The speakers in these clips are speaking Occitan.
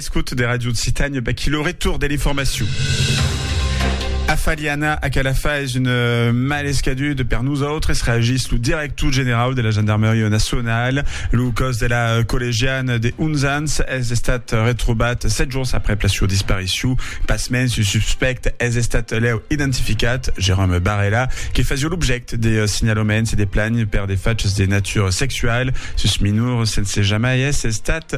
Escòte de Ràdio Occitània, baquí lo retorn de l'informacion. Afaliana a Calafà es un euh, mal escadut per nosautres, reagís lo director generau de la Gendarmeria Nacional. Lo còs de la euh, collegiana de 11 ans es estat retrobat 7 jorns après la sua disparicion. Pasmens, un suspèct es estat lèu identificat, Jérôme Barella, que fasió l'objècte de euh, signalaments e de plagnes per de fachs de natura sexual sus minors sense jamai èsser estat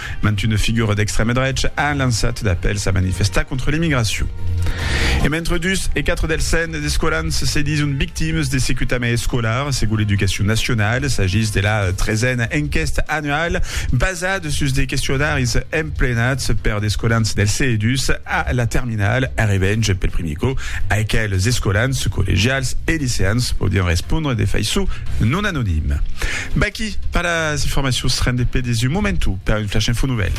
Mantunes figures d'extrèma drecha an lançat d'apèls a manifestar contra l'emigracion. E mentre dus e quatre dels cent escolans se dison victimes de secutament escolar, segon l'Educacion Nacionala, s'agís de la tresena enquèsta annuala basada sus de questionaris emplenats per d'escolans del CE2 a la terminala, arribènt pel primier còp a aqueles escolans collegials e liceans podián respondre de faiçon non anonima. Baquí pas las informacions, rende pe des un momentu per un flash info nouvèl.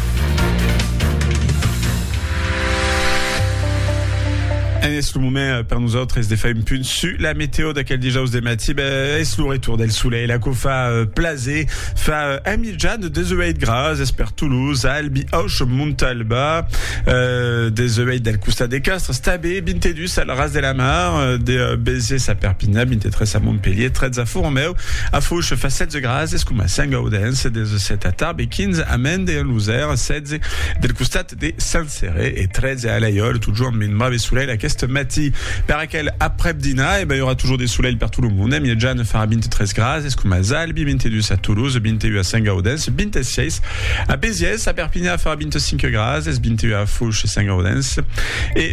En es lo moment per nosautres de far un punt su la meteo d'aquel dijaus de matí. Ben, es lo retour del solelh, aquò fa plaser, fa un mitjan de 18 graus, es per Toulouse, Albi, Auch, Montalba, eh, 18 del costat de Castres, tanben 22 Sal ras de la mar, de Bèlzes a Perpinha, 23 a Montpelhier, 13 a Foramèu, a Fouche fa 16 grases coma Sent-Gaudens, 17 a Tarbes e 15 a Mende en Losèr, 16 del costat de Saint-Céré e 13 a Alaiòl, totjorn amb un brave solelh aqueste matí. Per aquel aprèp dinar, e ben i aurà totjorn de solelh per tot lo monde, en miètjana farà 23 grases coma Zalbi, 22 a Toulouse, 21 a Sent-Gaudens, 26 a Bèlzes, a Perpinha farà 25 grases, 21 a Fouche, Sent-Gaudens e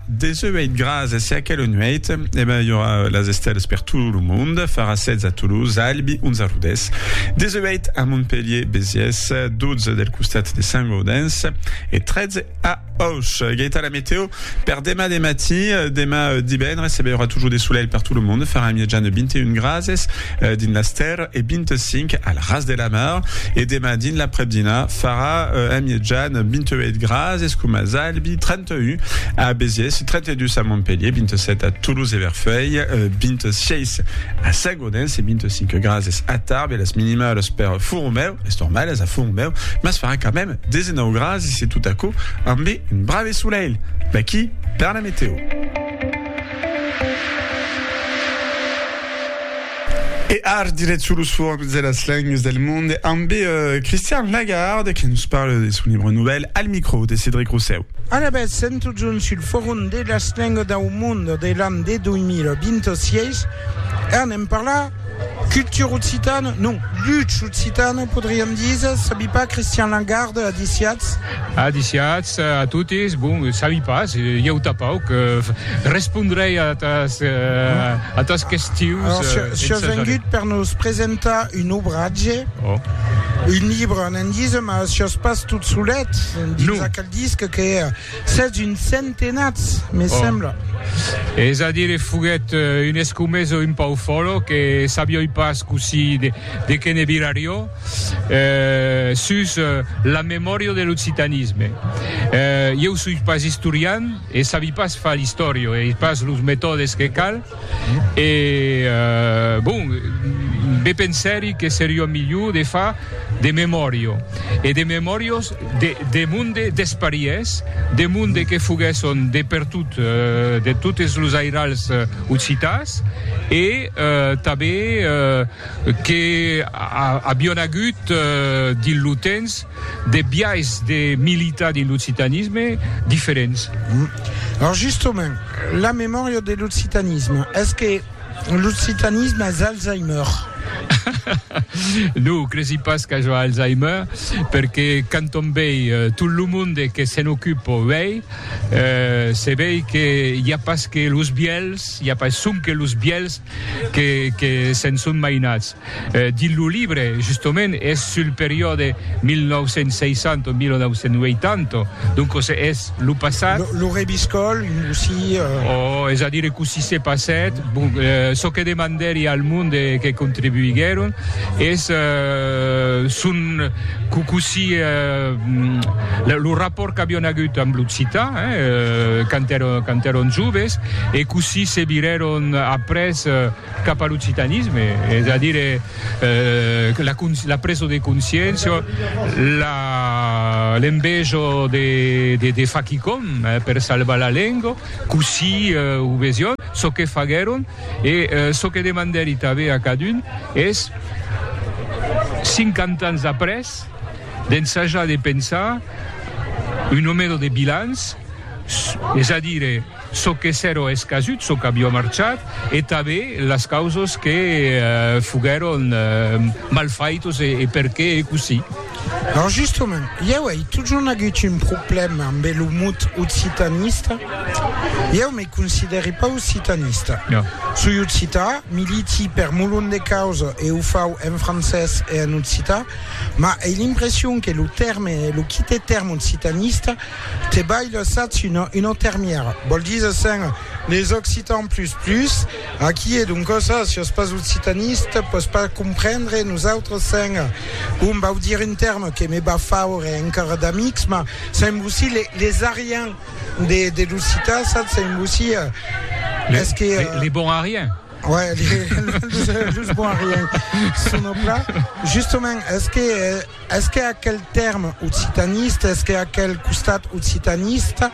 Deseu eit gras e se aquela nueit e ben i aurà las estèlas per tot lo mond, farà 16 a Toulouse, Albi, 11 a Rodés. Deseu eit a Montpelhier, Besiès, 12 del costat de Sant Gaudens e 13 a Auch. Geita la meteo per demà de matí, demà divendres e ben i aurà totjor de solelh per tot lo mond, farà en miatjana 21 grases dins las terres e 25 al ras de la mar e demà dins l'aprèp-dinà farà en miatjana 28 grases coma Albi, 30 Ui, a Béziers, 32 a Montpelhier, 27 a Toulouse e Verfeil, 26 a Sagodens e 25 grases a Tarbes. Las minimales per Fourmeu, es normales a Fourmeu, mas farà quand même 19 grases e tot aquò ambe un brave solelh. D'aquí per la meteo. E ar diret sur los formes de las lengues del monde amb Christian Lagarde que nos parle de son libre novèl al micro de Cedric Rossèu. Alavetz, sèm totjorn sul forum de las lengues dau monde de l'an de 2026 e anem parlar cultura occitana, non, lucha occitana podriam díser, sabi pas, Christian Lagarde, adiciatz? Adiciatz a totes, bon, sabi pas, ieu tapauc, respondrei a atas, a tas questions. Alors, ce, ce vengut per nos presentar un obratge, oh. un libre, n'en dise, mas sos pas tot solet, dins no. aquel disc que sets un centenats, me oh. sembla. Es a dire, foguet eh, un escomeso un pau folo que sabioi pas così de, de que ne virario, sus la memòria de l'occitanisme. Ieu soi pas istorian e sabi pas far l'istòria, e ai pas los metòdes que cal, e bon, be pensèri que seriá milhor de far de memòria, e de memòrias de monde despariés, de monde que foguèsson de pertot, de totes los airals occitans, e tanben. que avion agut dins lo temps de biais de militar dins l'occitanisme diferents. Lors justement, la memòria de l'occitanisme, es que l'occitanisme es Alzheimer? Non, cresi pas qu'aja Alzheimer, perque quand on vei tot lo monde que se'n ocupa uèi, se vei que i a pas que los vièlhs, i a pas sonque los vièlhs, que que se'n son mainats dins lo libre justement es sul periòde 1960 o 1980 doncos es lo passat lo rebiscòl cossí o es a dire cossí se passèt bon çò que demandèri al monde que contribuiguèron es son cossí lo rapòrt qu'avion agut amb l'occitan. quand èron joves e cossí se virèron après cap a l'occitanisme, es a dire, la presa de consciéncia, l'enveja de far quicòm per salvar la lenga, cossí o vesián, çò que faguèron e çò que demandèri tanben a cadun es, cinquanta ans après, d'ensajar de pensar un nomero de bilans, es a dire, çò que s'èro escasut, çò qu'avió marchat, e tanben las causas que foguèron mal faitas e perqué ei cossí. Lors justament, ieu ei totjorn agut un problèma ambe lo mot occitanista. Ieu me considèri pas occitanista. Soi occitan, militi per molon de causas e o fau en francés e en occitan, Mas ei l'impression que lo tèrme, lo quite tèrme occitanista, te balha sats una una termièra. Vòl díser sens les occitans plus plus, aquí e doncas ah, si ès pas occitanista, pòs pas comprendre nosautres sens, bon, vau dire un tèrme que me va faure encara d'amics, mas sens vosí les les ariens de de l'occitan, sats, sens vosí, es que. Les bons ariens. Ouais, los boiriens son au plat. Justement, est-ce que, est-ce que aquel terme occitaniste, est-ce que aquel costat occitaniste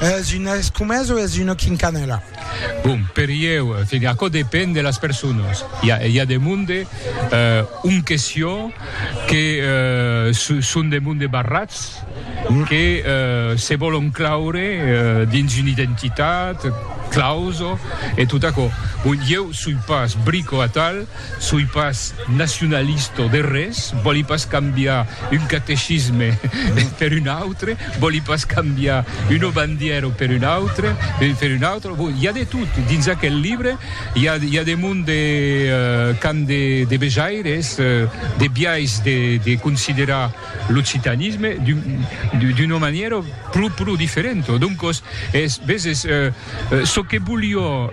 es une escomesa ou es une quincanela? Bon, per ieu, aquò depend de las personas. I a, i a de monde, euh, un question que, euh, son de monde barrats, que se vòlon claure dins una identitat, clauso e tot aquò. Bon, ieu soi pas brico atal, soi pas nacionalisto de res, vòli pas cambiar un catecisme per un autre, vòli pas cambiar una bandièra per una autre, per una autra, bon, i a de tot dins aquel libre, i a, i a de mon de qu'an de, de vejaires, de biais de, de considerar l'occitanisme d'una manièra pro pro diferenta. Doncos, es, veses, çò que volió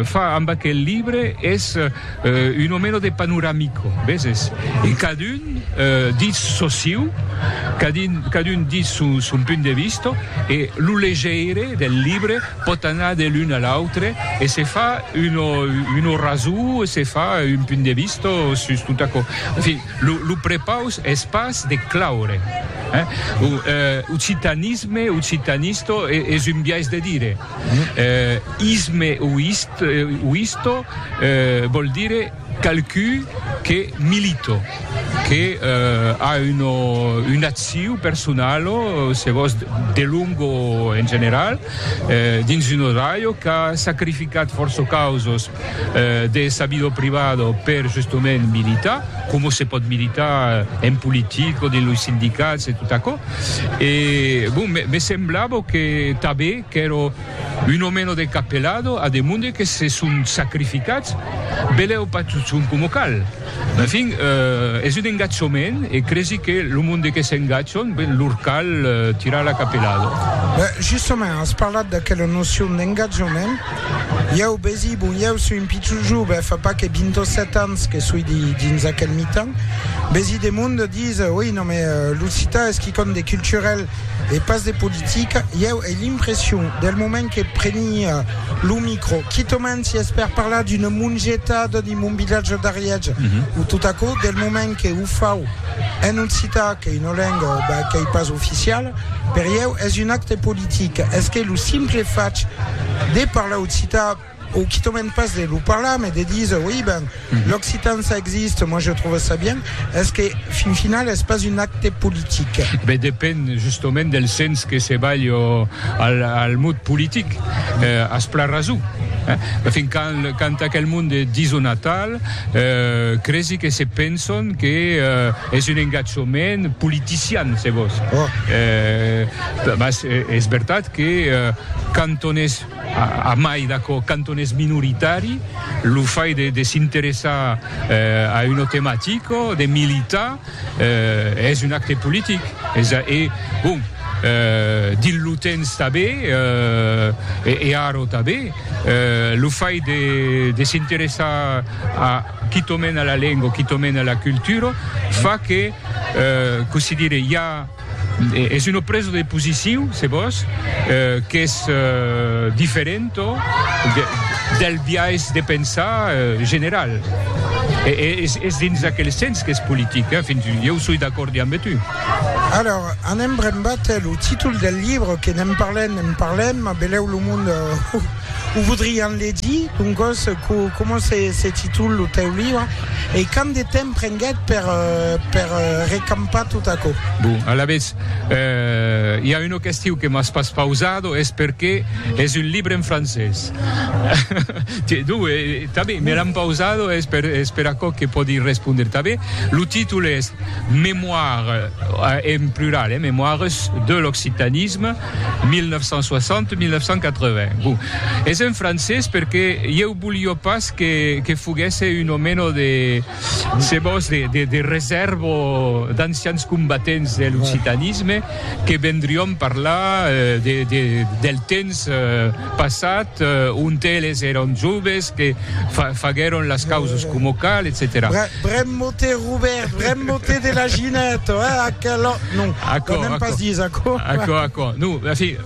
far amb aquel libre es una mena de panoramico, veses, e cadun ditz çò siu, cadun cadun ditz son son punt de vista e lo legeire del libre pòt anar de l'un a l'autre e se far una una rasó e se far un punt de vista sus tot aquò. En fin, Lo prepaus es pas de claure. Occitanisme, occitanisto, es un biais de dire. Isme o isto vòl dire qualqu'un que milito, que a una acciu personalo, se vòs, de longo en general, dins un odraio qu'a sacrificat fòrça causos de sabido privado per justement militar, coma se pòt militar en politica o dins los sindicats e tot aquò. E bon, me semblava que tanben qu'èra un o meno de capelado a de monde que se son sacrificats, belèu pas totjorn coma cal. En fin, es un engatjament e cresi que lo monde que s'engatjan, ben, lor cal tirar la capelada. Justament, as parlat d'aquela nocion d'engatjament. Ieu besi, bon, ieu soi un pichon jove, fa pas que vint o sèt ans que soi dins aquel mitan, besi de monde, dise, oi, non, mais lo cita es quicòm de culturel e pas de politica, ieu ai l'impression, del moment que preni lo micro, quitament si es per parlar d'una mongetada dins mon vilatge d'Ariège, o tot aquò, del moment que o fau, en occitan qu'ei una lenga ben qu'ei pas oficiala, per ieu es un acte politic, es que lo simple fach de parlar occitan o quitament pas de lo parlar mais de díser oi ben l'occitan ça existe moi je trouve ça bien es que fin final es pas un acte politic? Ben depend justament del sens que se balh al al mot politic, as plan rason, fin quand quand aquel monde dison atal, Cresi que se penson que es un engatjament politician, se vos. Mas es vertat que quand on es, a mai d'aquò, quand on es minoritari, lo fait de s'interessar a una tematica, de militar, Es un acte politic, es a e bon, dins lo temps tanben e ara tanben, lo fait de de s'interessar a quitòment a la lenga, quitòment a la cultura, fa que, cossí dire, i a Es una presa de posiciu, se vòs, qu'es diferenta del biais de pensar general. Es dins aquel sens qu'es politic, fins, ieu soi d'acòrd damb tu. Alors, anem brembat, lo títol del libre, que ne'n parlem, ne'n parlem, belèu lo monde. O voudrián legir, doncòs, coma se titula lo tèu libre e quant de temps prenguèt per recampar tot aquò? Bon, alavetz, i a una question que m'as pas pausada, es perqué es un libre en francés. Tiens, donc, tanben, me l'an pausada, es per es per aquò que pòdi respondre tanben. Lo títol es Mémoires, en plural, eh, Mémoires de l'occitanisme. 1960-1980. Bon, es en francés perque ieu bolio pas que, que foguèsse un omeno de, se vos, de, de, de resèrva o d'ancians combatents de l'occitanisme que vendrión parlar eh, de, de, del temps eh, passat, eh, ont eles èron joves, que fa, faguèron las causas coma cal, etcetèra. Brem mote, Robert, brem mote de la Ginette, eh, aquel Non, aquò, n'èm pas dins aquò. Aquò, aquò. Non, merci.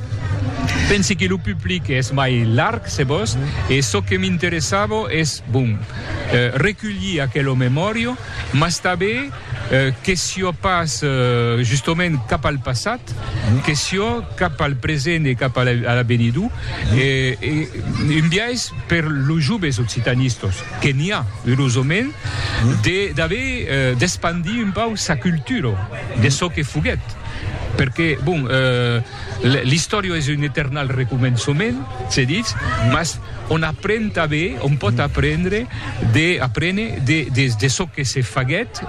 Pensi que lo public es mai larg, se vos, e çò que m'interessava es, bon, reculhir aquela memòria, mas tanben que siá pas justament cap al passat, que siá cap al present e cap a l'avenidor, e un biais per los joves occitanistas. que n'i a erosament de d'aver d'espandir un pauc sa cultura de çò que foguèt perque bon l'istòria es un eternal recomençament se ditz mas on apren tanben on pòt aprendre de aprene de de çò que se faguèt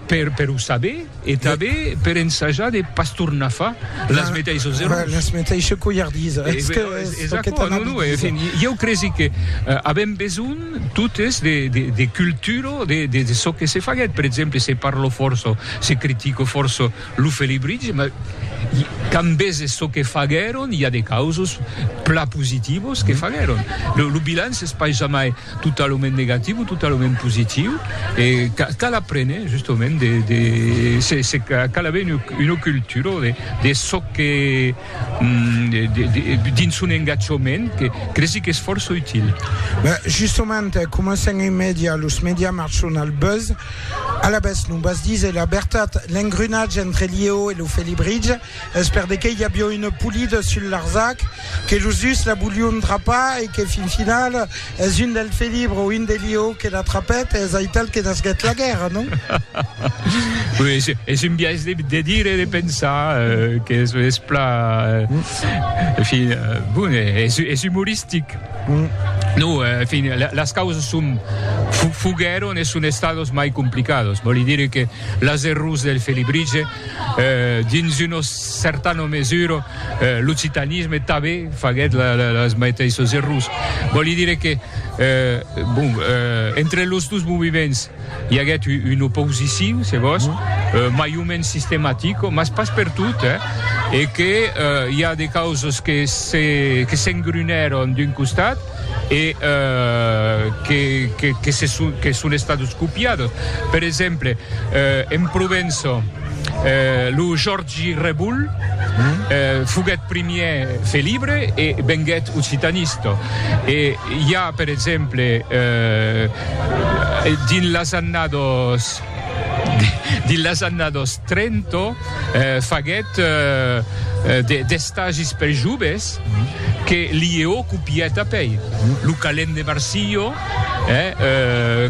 per per o saber E tanben per ensajar de pas tornar far las meteissos errors. Las meteisses colhardisas. Es que es çò que t'an a dit. En fin, ieu cresi que avèm besonh totes de cultura de çò que se faguèt. Per exemple, se parla fòrça, se critica fòrça lo Felibritge, mas quand veses çò que faguèron, i a de causas plan positivas que faguèron. Lo bilanç es pas jamai Totalament negatiu o totalament positiu e cal aprene justament de de se cal aver una cultura de de çò que dins son engatjament que cresi qu'es fòrça util. Ben justament coma sens un media los media marchon al buzz, alabès non vas díser la vertat, l'engrenatge entre Liéo e lo Felibritge. Es per de qué i avió une polida sul Larzac, que los dus la volion trapar e que fin final es un del Felibre o un de Lió que la trapèt e es aital que nasguèt la guèrra, non? Oui, es un biais de, de dire e de pensar que es, es pla, en fin, bon, es, es humoristic. No, en fin, las causas son, foguèron e son estados mai complicados, vòli dire que las errors del Felibrige, Dins una certana mesura, l'occitanisme tanben faguèt las meteissas errors. Vòli dire que, bon, entre los dos movements i aguèt una oposició, se vòs, mai o mens sistematica, mas pas pertot, e que i a de causas que s'engrunèron d'un costat, e que son estados copiados. Per exemple, en Provença, lo Jòrgi Revoul foguèt primièr felibre e venguèt occitanista. E i a, per exemple, dins las annadas. Dins las annados trenta faguèt d'estagis per joves que Liéo copièt apèi. Lo calent de Marsilho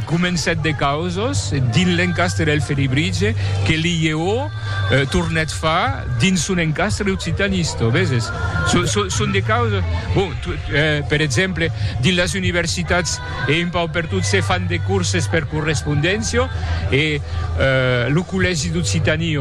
comencèt de causas dins l'encastre del Felibritge que Liéo tornèt far dins son encastre occitanista, veses? Son de causas, bon, per exemple, dins las universitats, E un pauc per tot se fan de corses per correspondéncia e lo collègi d'Occitanie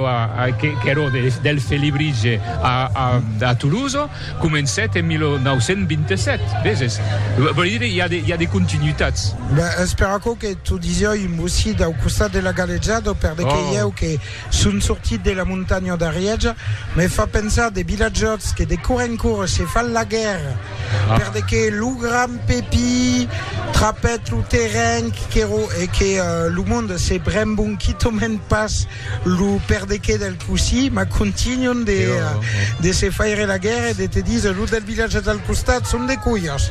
qu'èra del Felibritge a Toulouse comencèt en 1927, veses? Vòli dire i a de continuitats. Ben, es per aquò que t'o disiá un bocit au costat de la galejada, per de que ieu que son sortit de la montanha d'Arièja, me fa pensar de vilatjòts que de cor en cor se fan la guèrra. Perde que lo gran Pepi trapèt lo terren qu'èro e que lo monde se brembon quitament pas lo perde que del cossí, mas contínuan de de se faire la guèrra e de te díser los del vilatge del costat son de colhas.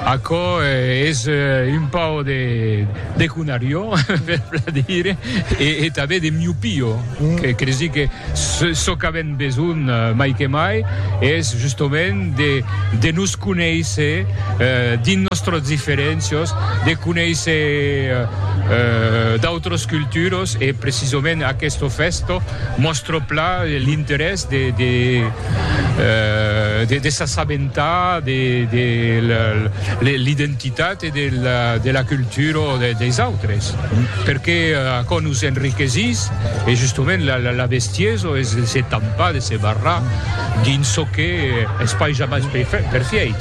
Aquò es un pauc de de conarió, per plan dire, e tanben de miopio. Que les dic que çò qu'avèm besonh mai que mai es justament de nos conéisser dins nòstras diferéncias, de conéisser d'autras culturas e precisament aquesta fèsta mòstra pla l'interès de s'assabentar de l'identitat de la cultura des autres perqué aquò nos enriquesís e justement la bestiesa es de se tampar de se barrar dins çò que es pas jamai perfièit.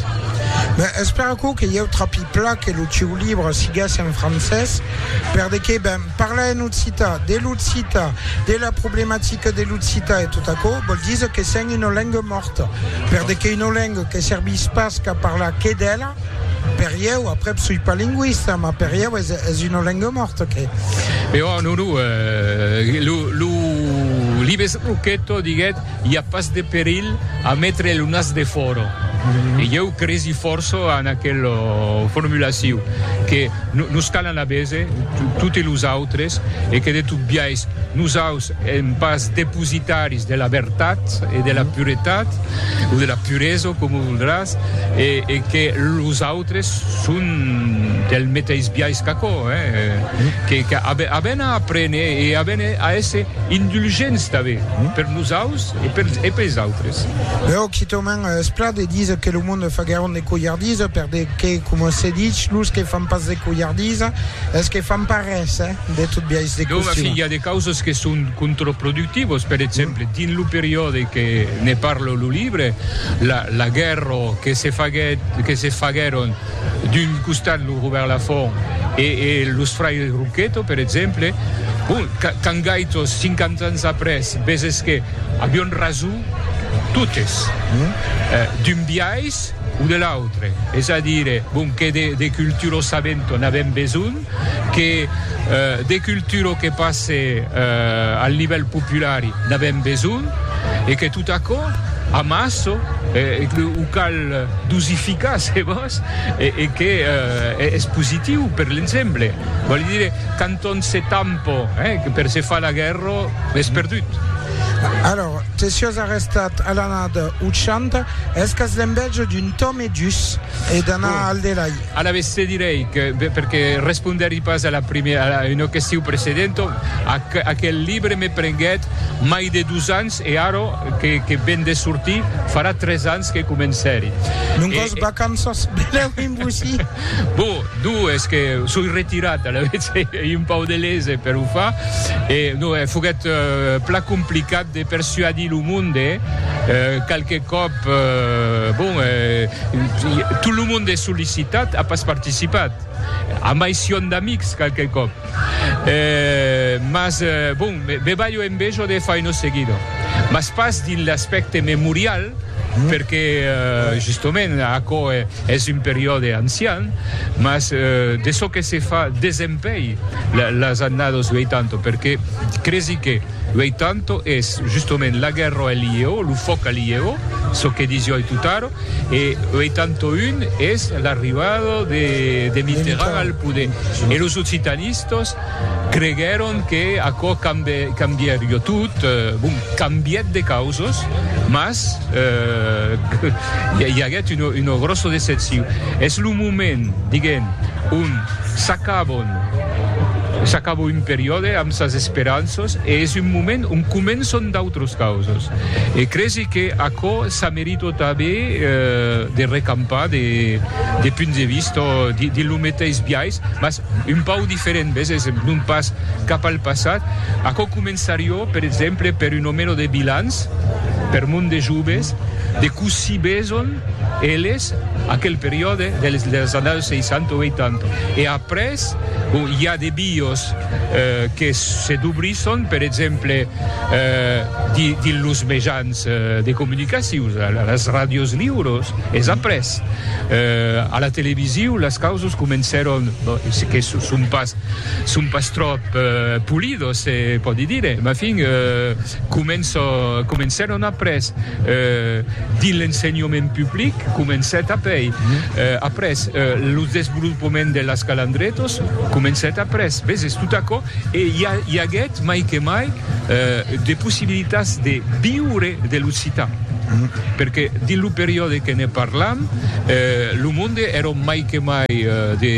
Ben espèr aquò que ieu trapi pla que lo sieu libre siguesse en francés per de qué ben parlar en occità de l'occità de la problematica de l'occità e tot aquò vòl díser que sèm una lenga mòrta per de qué una lenga que servís pas qu'a parlar que d'ela Per ieu, aprèp soi pas lingüista, mas per ieu es, es una lenga mòrta, que. Però a Nuru, eh, lo, lo Libes Roqueto diguèt, i a pas de perilh a metre lo nas defòra. E ieu cresi fòrça en aquela formulacion, que nos calan a bese, toti los autres, e que de tot biais, nosaus, Èm pas depositaris de la vertat e de la puretat, o de la puresa, coma voldràs, e que los autres son del meteis biais qu'aquò, que avèn a aprene e avèn a èsser indulgents tanben per nosaus e pels autres. Eo quitament es plat de díser que lo monde fa gairòn de colhardisa, perque, coma se dich, los que fan pas de colhardisa es que fan pas res, eh? De tot biais de costum. Dònc, i a de causas que son contraproductivas. Per exemple, dins lo periòde que ne parla lo libre, la, la guèrra que se faguèt, que se faguèron d'un costat lo Robèrt Lafont e, e los fraires Rouqueto, per exemple, bon, qu'a, qu'an gaitós, cinquanta ans après, veses que avián rason totes, eh, d'un biais o de l'autre. Es a dire, bon, que de, de cultura sabenta n'avèm besonh, que de cultura que passe al nivèl populari n'avèm besonh e que tot aquò amassa e que o cal dosificar se vòs e que es positiu per l'ensemble. Vòli dire, quand on se tampa per se far la guèrra, es perdut. Alòr, te siás arrestat a l'anada 80, es qu'as l'envèja d'un Tom e Dus e d'anar al delai. Alavetz te direi que, perque respondèri pas a la primièra, a una question precedenta, aquel libre me prenguèt mai de dus ans e ara que ven de sortir farà tres ans que comencèri. Non qu'os vacanças benèu en bocí. Bon, non, es que soi retirat, alavetz ei un pauc de lese per o far e non, foguèt plan complicat. de persuadir lo monde qualque còp bon tot lo monde es sollicitat a pas participat amb aicion d'amics qualque còp mas bon me balho en bejo de faino seguido mas pas dins l'aspècte memorial perque justament aquò es un periòde ancian mas de çò que se fa desempeir las annados 80 perque cresi que Uei tanto es justement la guerra el ieu, lo fòc al ieu, çò que disió ei tutaro, e uei tanto un es l'arribada de Mitterrand al poder. E los occitanistas creguèron que aquò cambièrió tot, bon, cambièt de causas, mas i aguèt una gròssa decepcion. Es lo moment, diguem, ont s'acabon, s'acabo un periòde amb sas esperanças e es un moment ont començon d'autras causas. E cresi que aquò s'a merito tanben de recampar de punts de vista dins lo meteis biais, mas un pauc diferent, ves, es non pas cap al passat. Aquò començarió, per exemple, per un o meno de bilans per mon de joves, de cossí beson eles. Aquel periòde dels annaus 60 o 80. E après, bon, i a de biòs que se dobrisson, per exemple, dins los mejans de comunicacion, las ràdios liuros, es après, a la televisiu, las causas comencèron, que son pas tròp polidos, se pòdi dire, mafin, Començo, comencèron après dins l'ensenhament public, comencèt apei après lo desvolopament de las calandretos, comencèt après, veses, tot aquò e i a, i aguèt mai que mai de possibilitats de viure de l'occitan, perque dins lo periòde que ne parlam lo monde èron mai que mai de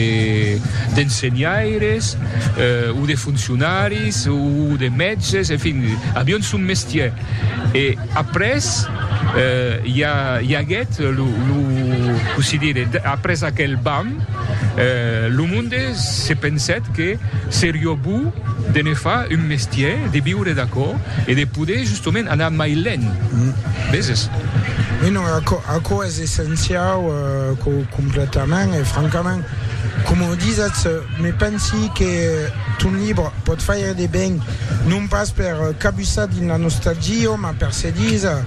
d'ensenhaires o de foncionaris o de mètges, Se fin avion son mestièr e après i aguèt lo que se dire après aquel bam lo monde se pensèt que serió bon de ne far un mestièr de viure d'aquò e de poder justament anar mai lent veses. Ui non, aquò es essenciau completament e francament Coma o disatz, me pensi que ton libre pòt faire de ben, non pas per cabussar dins la nostalgia, mas per se díser,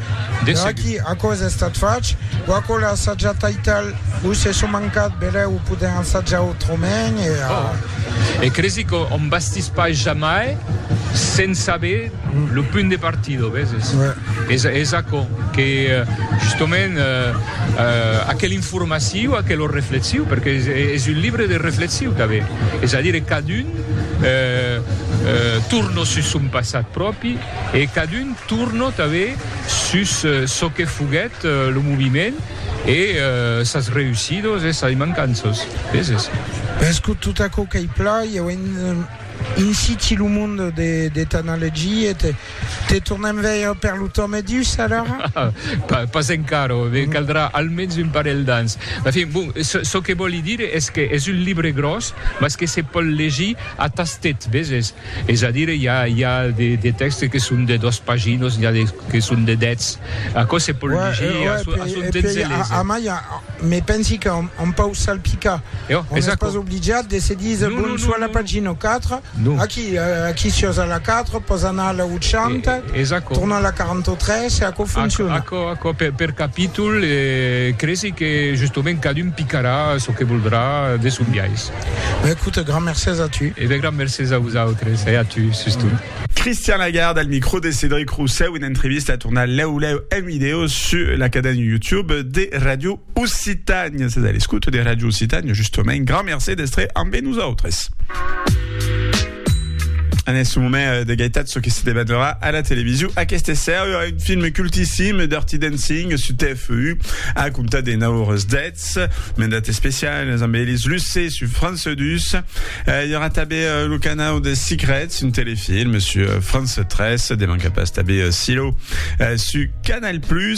Veraquí, aquò es estat fach, o aquò l'ai assajat taital, o se son mancat, belèu, o podèm assajar autrament, e a. E cresi qu'òm bastís pas jamai sens saber lo punt de partida, veses? Es aquò que, justement, aquel. formaciu a que lo reflexiu, perque es un libre de reflexiu tanben, es a dire cadun torno sus son passat pròpi e cadun torno tanben sus çò que foguèt lo moviment e sas reussidos e sas mancanças, veses? Ves que tot aquò qu'ei plan, ieu en siti lo monde de t'analegiet Te tornem veire per lo tòme dus, alara? Pas, pas encara, me caldrà almens un parelh d'ans. En fin, bon, çò que vòli dire es que es un libre gròs, mas que se pòl legir a tastet, veses? Es a dire, i a, i a de, de tèxtes que son de dos paginos, n'i a de que son de dètz. Aquò se pòl legir a son, a son temps e léser. A mai, me pensi qu'an, an pòu salpicar. On n'es pas obligat de se díser, bon, soit la pagina 4, Non. Aquí, aquí siós a la 4, pòs anar a la 80, e, es aquò. tornar a la 43 e aquò fonciona. Aquò, aquò, aquò per, per capítol, e cresi que justament cadun picarà çò que voldrà de son biais. Ben écoute, grand mercés a tu. E ben grand mercés a vosautres e a tu sustot. Christian Lagarde al micro de Cédric Roussel, una entrevista a tornar lèu lèu en vidèo sus la caden YouTube de Radio Occitània, sètz a l'escouta de Ràdio Occitània, justament. Grand mercé d'èstre ambe nosautres. En este moment euh, de gaitat, ce que se debatrà a la television aquesta sèria, un film cultissim, Dirty Dancing, su TFU, a comptat de 9 hores dets, mandat especial, amb Elis Lucé, su France 2. Euh, hi aura també euh, le canal de Secrets, un telefilm, su euh, France 3, de manca pas també euh, Silo, euh, su Canal+,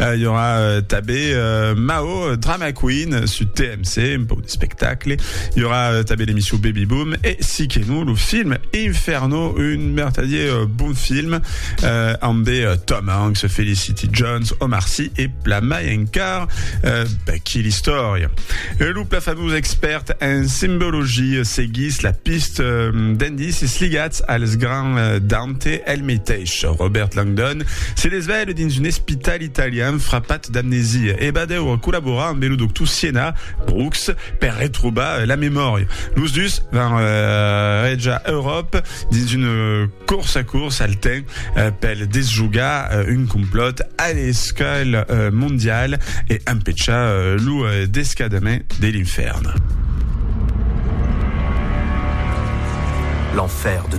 I aurà tabé Mao, Drama Queen, sud TMC, un pauc de spectacle. I aurà tabé l'emission Baby Boom e, si que non, lo film Inferno, un mertadier bon film, ambé Tom Hanks, Felicity Jones, Omar Sy e pla mai encara. Bèh, quina istòria! Lo pla famós expèrt en simbologia seguís la pista d'indicis ligats als grands dents. Te el meteis, Robert Langdon, se desvelh dins un espital italian frapat d'amnesia e va deure collaborar ambe lo doctor Siena, Brooks, per retrobar la memòria. Los dus van rejar Euròpa dins un corsa-cors al temps pel desjogar un complòt a l'escala mondiala e empechar lo descadament de l'infèrn. L'enfer de.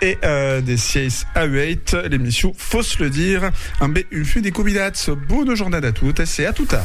E de 6 a 8, l'emission Fos le dire, ambe un fum de convidats. Bona jornada a totes e a tota!